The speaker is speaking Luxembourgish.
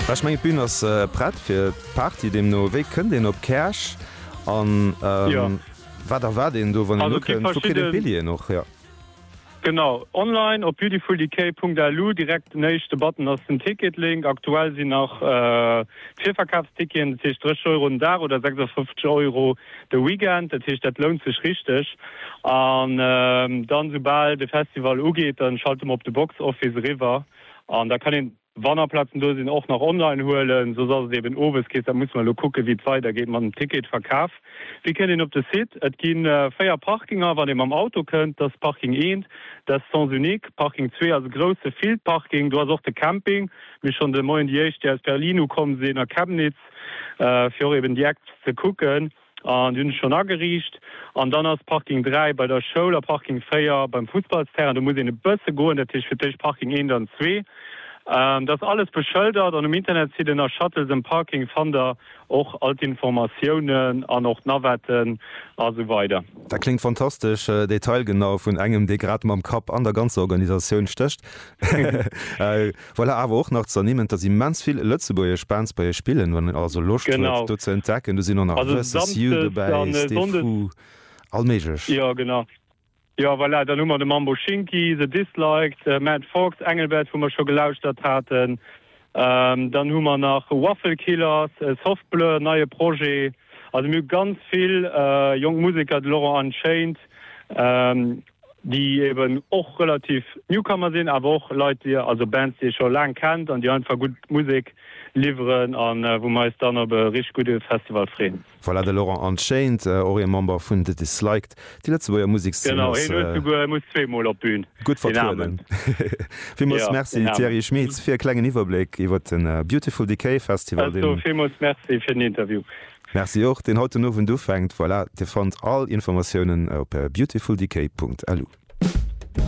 Well ech mengen d'Bün ass prett fir d'Party deemno wéi kënnt een op Käerch an wat erwaart een do wann een do kënnt? Wou kritt een d'Billjeeën och her? Genau, online op beautifuldecay.lu, direkt den éischte Button ass den Ticket-Link. Aktuell sinn nach d'Virverkafsticketen, dat heescht 30 Euro den Dag oder 56 Euro de Weekend, dat heescht dat lount sech richteg. An dann soubal de Festival ugeet, da schalte mer op de Box Office eriwwer. An da kann een, wann nach Plazen do sinn, och nach online huelen. Soss ass et eben owes Keess. Da musse mer elo kucken, wéi et weidergeet mat dem Ticketverkaf. Wéi kënnt een op de Site? Et gi véier Parkinger, wann ee mam Auto kënnt. Dat ass Parking eent, dat ass Sens unique. Parking zwee ass e grousse Fieldparking. Do ass och de Camping. Mir schonn de Moien déi éischt, déi aus Berlin ukomm sinn a Chemnitz, fir och eben déi Acts ze kucken. An déi hunn ech schonn ageriicht. An dann ass Parking 3 bei der Schoul a Parking 4 beim Fussballsterrain. Do muss een e bësse goen. Dat heescht fir d'éischt Parking 1, dann 2. Dat ass alles beschëldert an um Internetsite nach Shuttles and Parking fannt der och all d'Informatiounen an och d'Navetten a sou weider. Dat kléngt fantastesch detailgenau, vun engem, dee grad mam Kapp an der ganzer Organisatioun stécht. Voilà, awer och nach z'ernimmen, dass immens vill lëtzebuergesch Bands bei iech spillen. Wann een also Loscht huet, Genau. do ze entdecken, do sinn och nach Also Versus You Samsdes an dobäi, äh, Stefou, Sonndes. allméiglech. Jo, genau. Jo, voilà, dann hu mer de Mambo Shinki, The Disliked, äh, Matt Fox, Engelbert, wou mer scho gelauschtert haten. Ähm, dann hu mer nach Waffle Killers, äh, Soft Blur, neie Projet. Also mir hu ganz vill äh, jonk Museker, de Laurent Unchained, ähm, déi eben och relativ Newcomer sinn, awer och Leit, déi, also Bands, déi ee scho laang kennt an déi einfach gutt Musek liwweren a wou mer eis dann op e richteg gudde Festival freeën. Voilà, de Laurent Anscheinend och ee Member vun The Disliked. Déi Lëtzebuerger Musekszeen ass. Genau, hien huet esouguer, e muss zwee Mol op d'Bühn, gutt vertrueden. Villmools Merci Thierry Schmidt fir e klengen Iwwerbléck iwwert de Beautiful Decay Festival, deen. Villmools Merci fir den Interview. Merci och, deen haut den Owend ufänkt. Voilà, Dir fannt all Informatiounen op beautifuldecay.lu.